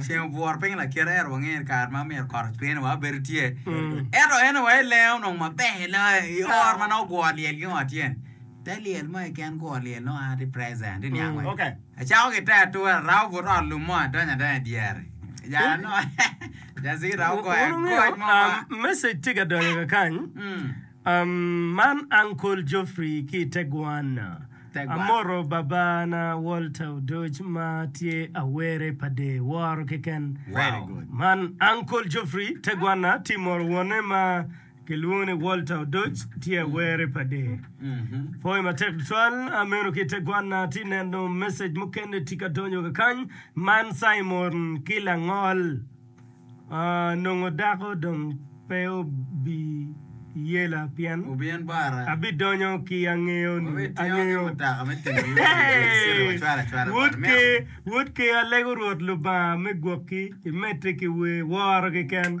Ceng obworo piny lakite ento wangeyo ni kare ma myero kot ocwer wa bedo tye. Ento en wa i lenge onongo maber loyo i oro ma nongo gwo lyel gingo tye. Te lyel mo keken gwo lyel nongo a tye present i niang wek acako ki te ature arabo but ot lum mo adonyo adanya i dyere. Jalo nongo Jazir romo goyo agoc mo ma. Message tye ka donyo kakany. Man Uncle Geoffrey ki i te Guana. Amoto Babana Walter Odoc ma tye awere pa dee woro keken. Man Uncle Geoffrey, te Guana, tye moro wonne ma kilwongo ni Walter Odoc, tye awere pa dee. Pwoyo matek tutwal ameno ki i te Guana, atye neno message mukene tye ka donyo kakany. Man Simon ki Langol. Nongo dako dong pe obiyela pien abidonyo ki angeyo Wod ker alego Rwot Lubanga me gwokki imedde ki wer woro keken.